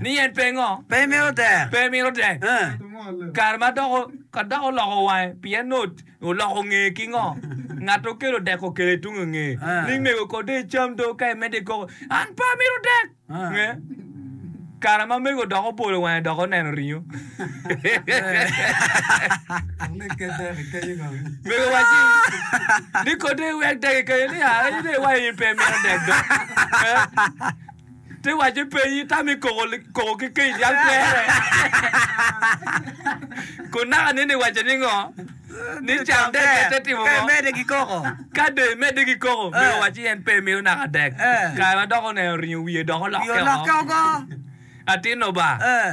ni en pe ngo? Pe imito tek? Pe imito tek? Kare ma dok, ka dok oloko wange, pien nut oloko ngeye ki ngo? Ngat okelo dek okelo i tung ngeye, ni mego ko de icam do ka imedde ikoko, an pe amito dek. Kare ma mego dok obolo wange dok oneno ringo. Mego waci ni kote iwek dek i kanye ni a en ine iwayo in pe imito dek do. Eh? Ti waci penyi tami koko koko ki kec yal kwere. Kun naka nini iwaco ni ngo? Ni cam dek pe te timo Ka ngo? imede ki koko. Ka do imede ki koko, Eh. mego waci en pe imito naka dek. Eh. Kare ma dok oneno ringo wiye dok Pi olokke olokke woko. ogo. Atinno ba. Eh.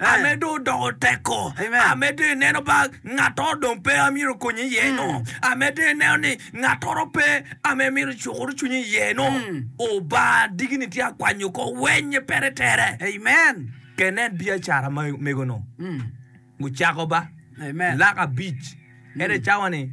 amedo odoko teko, amedo ineno ba ngattoro dong pe a myero okonyi iye-nu, amedo ineno ni ngattoro pe a ma imyero icukuru cwinyi iye-nu. Oba diki-ni tye a kwanyo ko wenye pere tere. Amen. Ke nen biacara ma mego-nu gucako ba lak abic, ento cawa-ni.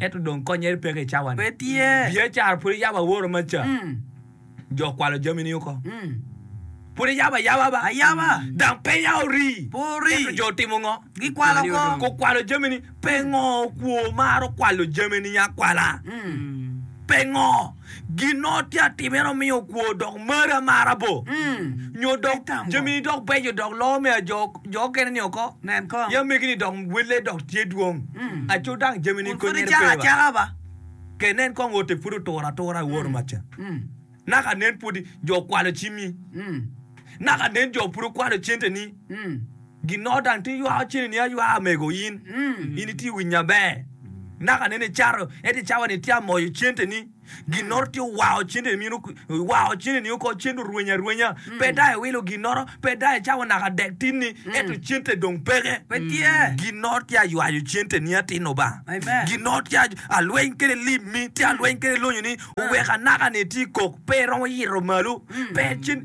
Ento dong konyere peke i cawa ni. Biacara pud iyabo aworo ma ca jo kwalo jami ni oko. Pud iyabo ayaba ba. Dang penya ori, ento jo otimo ngo? Gukwalo jami ni. Pe ngo okwo maro kwalo jami ni akwala? Pe ngo? Gin ma watye ka timo en aye miyo okwo dok mari amara bo nyo dok jamini dok beco dok loko me ajo jo okene ni oko i amegini dok welle dok tye dwong aco dang jamini konyere pe wa. Ke nen kong ote pud oturo atura i woro macca naka nen pud jo okwalo cimi naka nen jo pud okwalo cente ni. Gin Norton tye ywao cen ni aywaa mego in in i tye winya ber naka nene i cato ento i cawa ni tye amoyo cente ni gin noto tye owao cente ni owao cente ni oko cente orweny arwenya pe dai wilo gin noto pe dai i cawa naka dek tin ni ento cente dong peke pe tye gin noto tye aywayo cente ni atin obanga gin noto tye alweny kede lim mi tye alweny kede lonyo ni oweka naka ni tye kok pe iromo yito malo pe cen.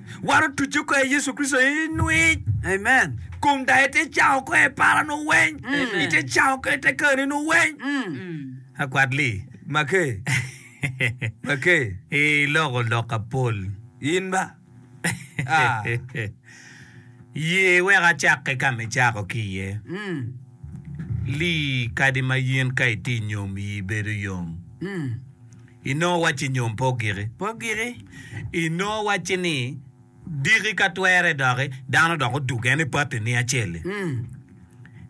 Waro tucce kor Yecu Kricito i nwic. Amen. Kom daye te cako kor i para nu weng. Amen. Ite cako kor ite kani nu weng. Akwat li. Make. Make. I loko lok apol. In ba. Ah. Ye wek acakke ka ma icako ki iye. Li kadi ma yin ka iti nyom yi bedo yom. I nongo wacci nyom pe ogiki? Pe ogiki. I nongo wacci ni diki ka twere doki dano dok odugo en i patini acel-li.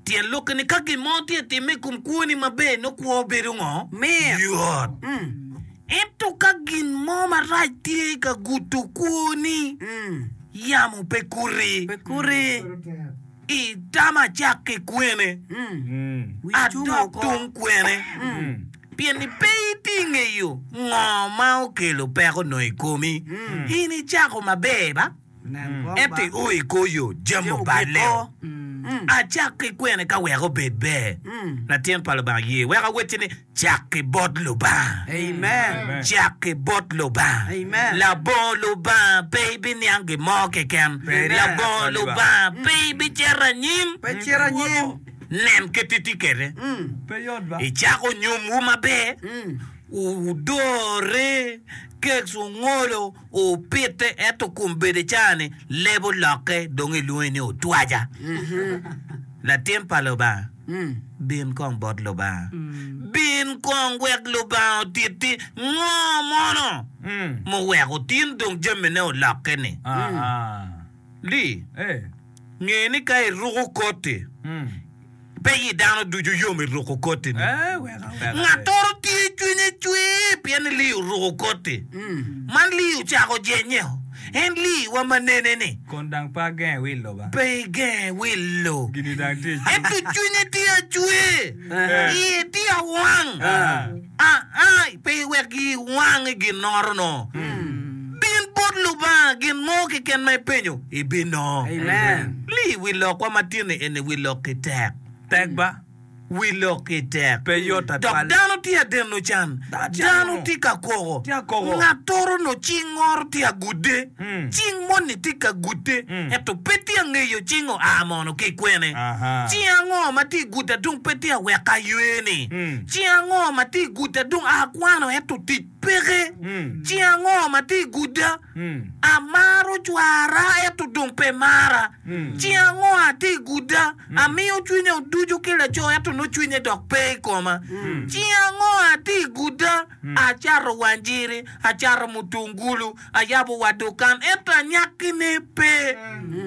Tyen lok-ki ni ka gin mo tye ka timme i kom kwoni maber, nongo kwo bedo ngo? Mit. Yot. Ento ka gin mo marac tye ka gudo kwoni, yamo pe kuti. Pe kuti. Itama cakki kwene, adok tung kwene. Pien ni pe iti ngeyo ngo ma okelo peko onongo i komi, in icako maber ba? Ento io i kor yo jami oballe o. Acak ki kwene ka wek obed ber? Latin pa Lubanga ye wek awacci ni, cak ki bot Lubanga. Cak ki bot Lubanga. Labongo Lubanga pe ibiniang gin mo keken. Labongo Lubanga pe ibicito anyim. Nen kit etikette. Icako nyomwu maber, wudore, keks wungolo, wupite, ento kun bedo i caa-ni, leb olokke, dong ilwonge ni otwaja. Latin pa Lubanga, bin kong bot Lubanga. Bin kong wek Lubanga otitti ngo mono muweko tin dong jamine olokke-ni? Li. Nge ni ka iruko koti, pe i dano ducu yom i ruko kotini. Ngattoro tye cwinye cwer pien ni Lee oruko koti. Man Lee ocako jenye o. En Lee wa ma nene-ni. Kun dang pe agenge wilo ba. Pe igenge wilo. Gini dang tye i cwiny. Ento cwinye tye acwer. Iye tye awang. Aa, pe iwek giwang i ginnoro-nu. Bin bot Lubanga gin mo keken ma ipenyo, ibinongo. Li i wi lokwa ma tyen-ni eni, Wi lokki tek. Tek ba? Wi lokki tek. Pe yot Dok twatwal. dano tye adeno can. Dano can. Dano tye ka koko. Tye ka koko. Ngat toro no ci ngoro tye agude. cing moni tye ka gute, ento pe tye angeyo cing oa mono ki kwene. Cing ango ma tye guta dong pe tye aweko aywe-ni? Cing ango ma tye guta dong akwano ento tic peke? Cing ango ma tye guda amaro cwara ento dong pe mara? Cing ango atye guda amiyo cwinya oduco ki laco ento nongo cwinye dok pe i koma? Cing ango atye guda acato wanjiri, acato mutungulu, Ayabo wa dukan, ento anyakkine pe.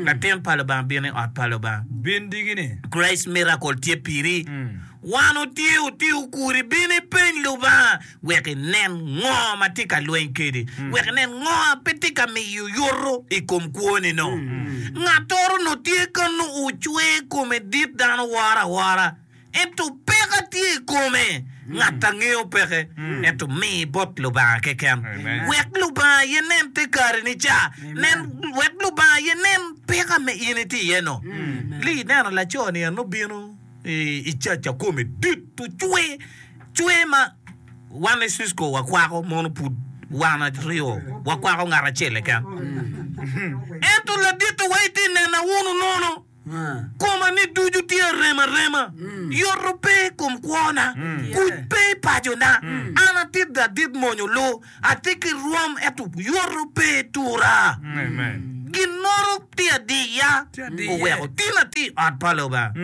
Latin pa Lubanga bino i ot pa Lubanga. Bin digini. Grace Miracle tye piri. Wan otye otiyo kuri, bin ipeny Lubanga wek inen ngo ma tye ka lweny kedi, wek inen ngo ma pe tye ka miyo yuto i kom kwoni no. Ngattoro onongo tye kanu ocwer kome dit dano woro awora. Ento peka tye i kome. Ngat a ngeyo peke ento mi bot Lubanga keken, wek Lubanga aye nen te kare ni ca, nen wek Lubanga aye nen peka me in itye iye no. Li ineno laco ni en obino i caca kome dit ocwe cwe ma wan i Cisco wakwako mono pud wan aryo wakwako ngat acel keken. Ento ladittiwa itye nena wunu nono. Koma ni ducu tye arem arema, yoto pe i kom kwona, kuc pe i pacona. An adit ga adit mony olu, atye ki rwom ento yoto pe i tura. Ginnoro tye adiya, oweko tin ati i ot pa Lubanga,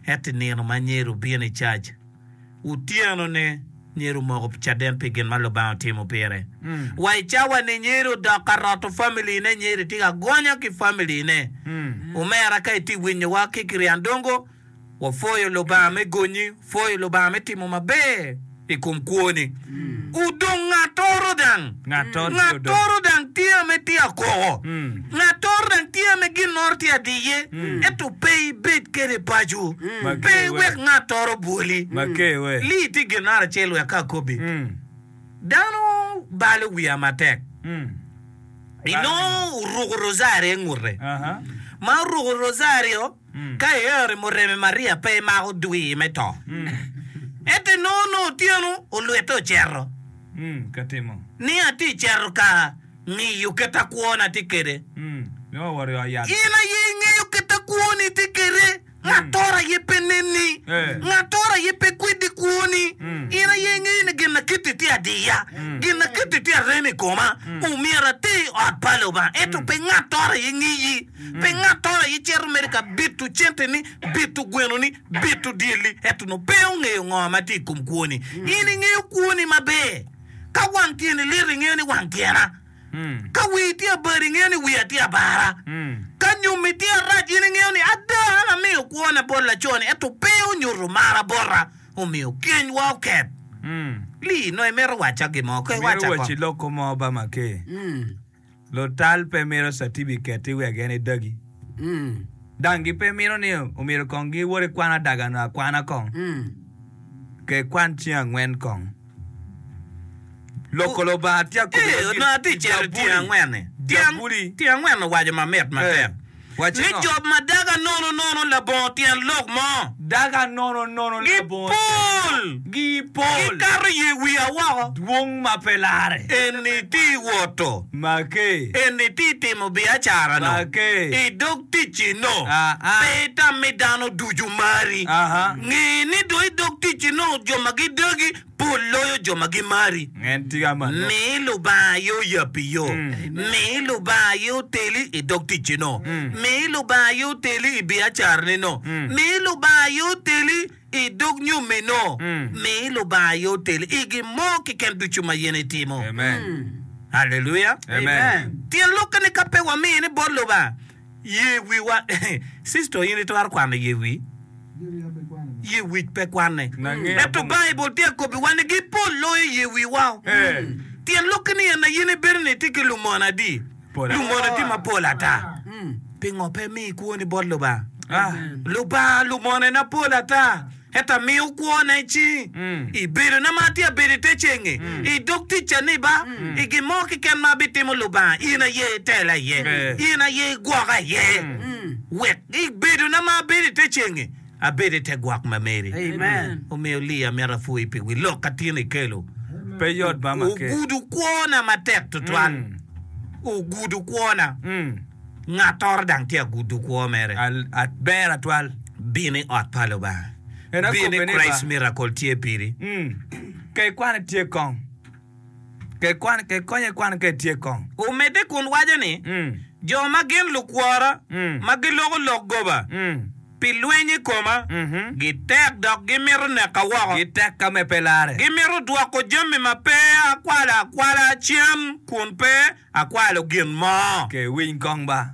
ento i nino ma anyero bino i cac. otyenone myero omoko caden pi gin ma Lubanga otimo pire, wa i cawa-ni myero odok ka roto familine. Myero iti ka gonya ki familine. Omera, ka itye winyowa ki ki ryandongo, wapwoyo Lubanga me gonyi, wapwoyo Lubanga me timo maber i kom kwoni. odong ngatoro dang ngatoro dang tye ame tye akoko ngatoro dang tye ame ginnoro tye adiye ento pe ibed kede paco pe iwek ngatoro bwoli li iti ginnaro acel wek ka akobi dano balo wiya matek inongo oruko rosari ingute ma oruko rosari o. Ka iero i mureme Maria pe imako dwi me to. Ento inongo nongo otyeno olwitte ocito. Ni atye i cito ka ngiyo kit a kwona tye kede. In aye ingeyo kit a kwoni tye kede. Ngattoro aye pe nenni. Ngattoro aye pe kwedi kwoni. In aye ingeyo ni gin a kiti tye adiya. Gin a kiti tye arem i koma. Omyero ati i ot pa Lubanga. Ento pe ngattoro aye ngiyi. Pi ngattoro aye cito mere ka bito centeni, bito gwenoni, bito dyelli, ento nongo pe ongeyo ngo ma tye i kom kwoni. In ingeyo kwoni maber. Ka wang tyeni lit, ingeyo ni wang tyena. Ka wii tye abari, ingeyo ni wiya tye abara. Ka nyommi tye arac, in ingeyo ni ada an amiyo kwona bot laconi, ento pe onyuto mara bota, omiyo kenywa oket. Lee, nongo imito wacca gin mo? Koy, wacca Imito waci kong. loko mo ba maker? Lutal pe mito catibiketi wek en edagi. Dang gipe mito ni omyero kong giwot i kwan adaga-nu akwana kong, ke kwan cing angwen kong. Loko Lubanga tye akobbi madit i Jabuli. Jabuli. ni job ma daga nono nono labongo tyen lok mo, gipol, gikato ye wiya woko. Eni ti woto, eni ti timo biacara-no, i dog ticci-no, pe itam ni dano ducu mari. Nge ni dong i dog ticci-no jo ma gidagi Pol loyo jo ma gimari. Mi Lubanga aye oyabbi yo. Mi Lubanga aye oteli i dog ticcino. Mi Lubanga aye oteli i biacaranino. Mi Lubanga aye oteli i dog nyomino. Mi Lubanga aye oteli i gin mo keken ducu ma in itimo. Haleluya! Tyen lokke ni ka pe wamiyo ni bot Lubanga, Ye wiwa. Sister in itwero kwano ye wi? Ye wic pe kwanne. Ento Baibul tye ka kobbiwa ni gi pol loyo ye wiwa. Tyen lok-ki ni en aye ni bedo ni itye ki lumono adi? Lumono tye mapol ata. Pingo pe imiyo ikwoni bot Lubanga? Lubanga lumonone pol ata. Ento amiyo kwona i cingi, i bedona ma atye abedo i te cenge, i dog tic caniba, i gin mo keken ma abitimo, Lubanga, in aye itela iye, in aye igwoka iye, wek i bedona ma abedo i te cenge, abed i te gwok ma meri. Omiyo, Lee, amito apwoyi pi wi lok a tin ikelo. Pe yot bama kec. Ogudo kwona matek tutwal. Ogudo kwona. Ngattoro dang tye agudo kwo mere. Aber atwal, bino i ot pa Lubanga. En akobbe ni ba. Bino i Christ Miracle tye piri. Ka ikwano itye kong. Ka ikwano, ka ikonyo ikwano ka itye kong. Omedde kun waco ni, Jo ma gin lukwora, ma giloko lok goba. pi lweny i koma. Gitek dok gimito neka woko. Gitek ka me pe larre. Gimito dwoko jami ma pe akwalo akwala cen kun pe akwalo gin mo. Ke winy kong ba.